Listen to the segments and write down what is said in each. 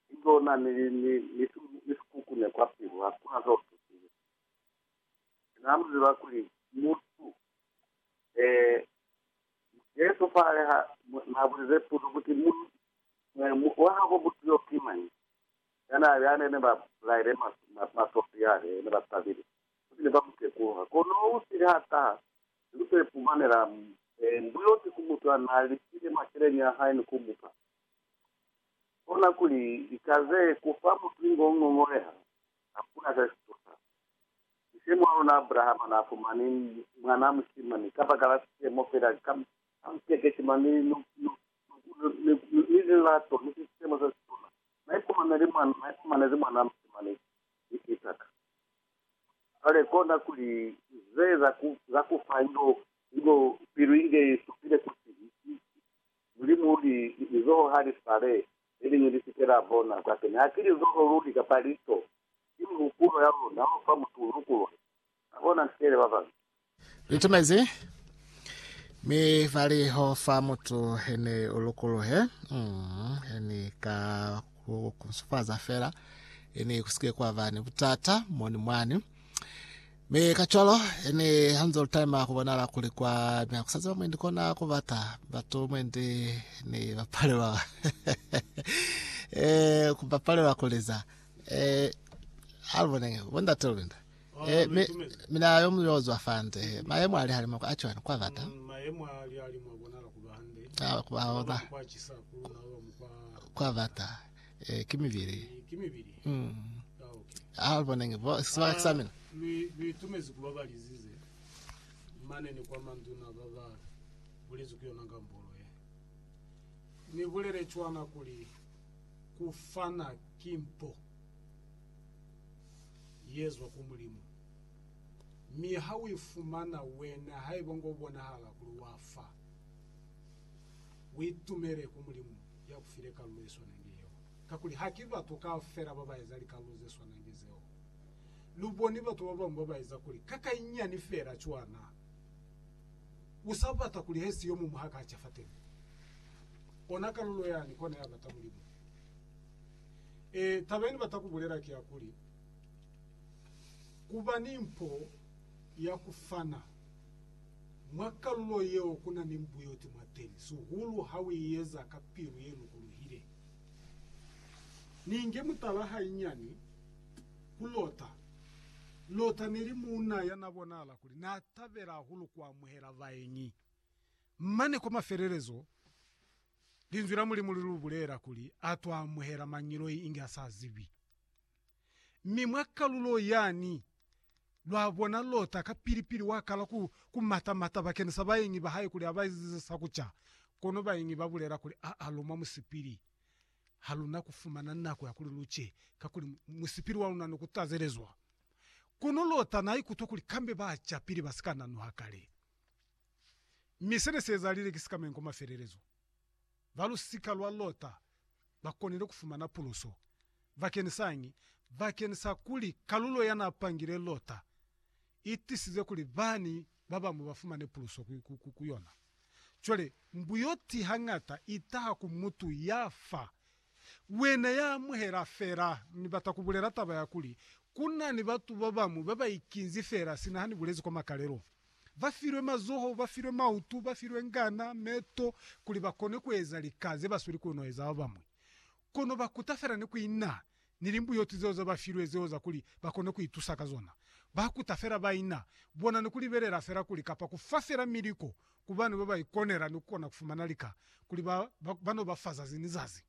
Ilona ni, ni, ni, ni si, ni si kukune kwa pilu, hakuna ze u tutile. Mi Na mu ziba kuli mutu, eh, Jesu fale ha Na bulize puzo kuti, Mu, eh, mu, wa habo mutu yo ki mañi? Yana, yane ne ba bulaile ma, ma, masofi yale, ne ba tabile, futi ne ba mu tekuluha. Kono u sile ha taha, ni ku to ipumanela, eh, mbuyoti ku mutu ya na lifile maceleñi a hae ni ku mu fa. kona kuli lika ze kufa mutu ingo ngongoleha, hakuna se si tusa. Ni semo a luna Abrahama na fumani mwana mushimani kabakala semo fela ka muteketi mane ni lukulo, ni lilato, ni sisemo se situna. Na ifumaneli mwana, na ifumanezi mwana mushimani, ki Isaka. Cwale kona kuli ze za kufa ingo pilu inge isupile kuti ki Mulimu ki lizoho ha li sale, le liñwi li si ke la bona. Kwateni ha ki lizoho luli kapa lico, ki mihupulo ya luna u fa mutu u lukuluhe. Na bona ntiele ba bañwi. Litumezi, mi fa liho fa mutu hene u lukuluhe, he ni ka ku kunsufaza fela, he ni ku si ke kwa ba ni butata moni mwani. Mi kacwalo, yani hanze ulitayima kubonala kuli kwa mya kusaziba mwendi kona kubata batu mwendi ni bapalelwa eh, kubapalelwa kuliza eh, alibonenge bondate lubinda eh, mi, mina yo muyozwa fande mayemo ali halimo kwa achwani kwa bata mayemo ali alimo abonala kuba hande ah, kwa ona kwa chisa kuluna lomu kwa kwa bata Eh, ki mibili. Eh, ki mibili. Mm. Ah, okay. Ah, bonenge. Bo, sibaka ah, sa mina. Ni, ni itumezi kuba balizize. Mane ni kwa manduna baba bulezi ku yona ngambolo ye. Ni bulele chwana kuli kufana kimpo yezwa ku mulimu. Mi ha wifumana wena haiba ngo bonahala kuli wafa. Uitumele ku Mulimu ya ku file kalulo ye swanange yeo, kakuli haki batu kaufela ba ba eza likalulo ze swanange zeo. Lu boni batu ba bañwi ba ba eza kuli ka ka inyani feela cwa na u sa bata kuli he si yo muñwi ha ka ca fateni. Ona kalulo yani kona ya bata Mulimu. Ee, taba ye ni bata ku bulela ki ya kuli, ku ba ni mpo ya ku fana. Mwa kalulo yeo ku na ni mbuyoti mwa teñi, sihulu ha u i eza ka pilu ye lukuluhile. Ni inge mutala hainyani ku Lota. Lota ne li muuna ya na bonahala kuli n'a tabela hahulu ku amuhela baengi. Mane kwa mafelelezo, Linzwi la Mulimu li lu bulela kuli a t'o amuhela mañiloi inge a sa zibi. Mi mwa kalulo yani, lwa bona Lota kapili-pili wa kala ku, ku mata-mata bakenisa baengi ba hae kuli aba ezize sa kuca. Kono baengi ba bulela kuli, Aa, lu mwa musipili. Ha lu na ku fumana nako ya kuli lu ce, kakuli musipili wa luna ne ku tazelezwa. Kono Lota na ikutwa kuli kambe ba ca pili ba si ka nanuha kale. Mi se ne si ezalile ki sikamenko mafelelezo. ba lusika lwa Lota ba konile ku fumana puluso. Bakeni sañi? Bakeni sa kuli kalulo ya n'a pangile Lota i tisize kuli bani ba bañwi ba fumane puluso ku yona. Cwale, mbuyoti hañata i taha ku mutu ya fa Wena ya amuhela fela, Ni bata ku bulela taba ya kuli, ku na ni batu ba bañwi ba ba ikinzi fela sina ha ni bulezi kwa makalelo. Ba filwe mazoho, ba filwe mautu, ba filwe ngana, meto, kuli ba kone ku eza lika ze ba sweli ku no eza ba bañwi. Kono ba kuta fela ni ku ina ni limbuyoti zeo ze ba filwe zeo za kuli ba kone ku itusa ka zona. Ba kuta fela ba ina bona ni ku libelela fela kuli kapa ku fa fela miliko Ku bani ba ba ikonela ni ku kona ku fumana lika kuli ba ba no ba fa zazi ni zazi?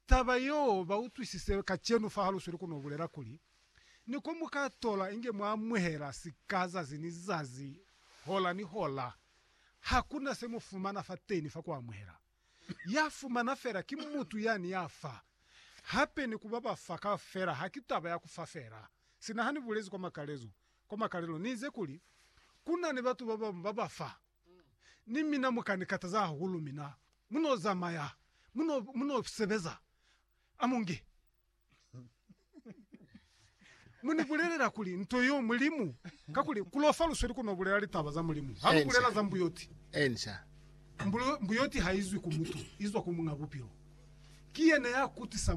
Taba yeo ba utwisise kacenu fa ha Lusweli ku no bulela kuli, Ni ko mu ka tola inge mwa amuhela sika zazi ni zazi, hola ni hola. Ha ku na se mu fumana fateni fa ku amuhela. ya fumana fela ki mutu yani ya fa, hape ni kuba ba fa kaufela haki taba ya kufa fela. Sina hani bulezi kwa makalezo, kwa makalelo ni ize kuli, Kuna ni batu babamu ba ba fa, ni mina mu ka ni kataza hahulu, mina mu no zamaya, mu no, mu no sebeza, amunge. Mu ni bulelela kuli nto yeo Mulimu, kakuli ku lofa lusweli ku no bulela litaba za Mulimu. Ha lu bulela za mbuyoti, Answer. Mbuyoti ha i zwi ku mutu, i zwa ku Muñ'a Bupilo. Ki yena ya kutisa